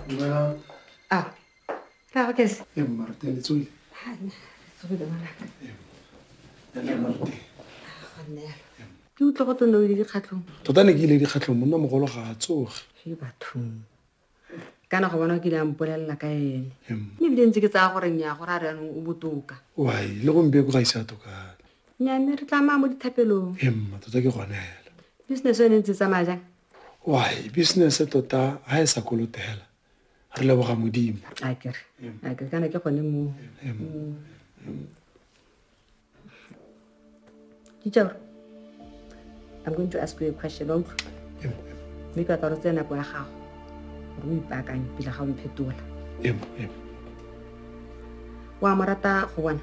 Dumelang. A re a ke se. E mma re tele tsoi. Ha nna. Tsoi le bana. E. Ya le mma te. Ha nna. Ke utlwa go tone le dikgatlhong. Tota ne ke ile dikgatlhong monna mogolo ga a tsoge. Ke bathong. Kana go bona ke ile a mpolelela ka ene. Mme bile ntse ke tsaya gore nya gore a re anong o botoka. Wai, le go mpe go ga isa toka. Nya mme re tla mo dithapelong. Emma tota ke gone hela. Business yone ntse tsamaya jang? why business tota ha e sa kolotela re leboga modimo akere akere kana ke gone mo teacher i'm going to ask you a question wa utlwa mme ka tsaro tse nako ya gago re o ipaakanye pila ga o mphetola wa mo rata go bona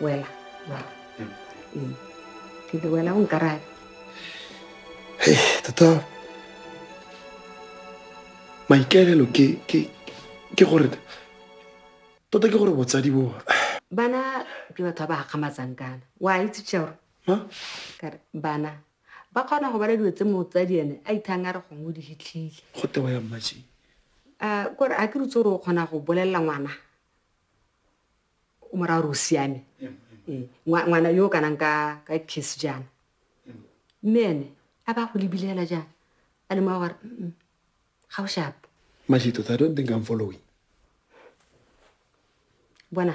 wela Ee. ke re wela o nkarabe Hey, tota maikaelelo ke ke ke gore tota ke gore botsadi bo bana ke batho ba ba gakgamatsang kana wa itse tšeore kare bana ba kgona go bala dilo tse motsadi ene a ithang a re gongwe o di hitlhile go tewa ya mmaji um kore a ke rutse gore o kgona go bolelela ngwana o mo raya gore o siame ee, ngwana yo o kanang ka kiss jaana mme ene a ba go lebile fela jaana a le moa gore ga o shapo mashito i don't think i'm following bona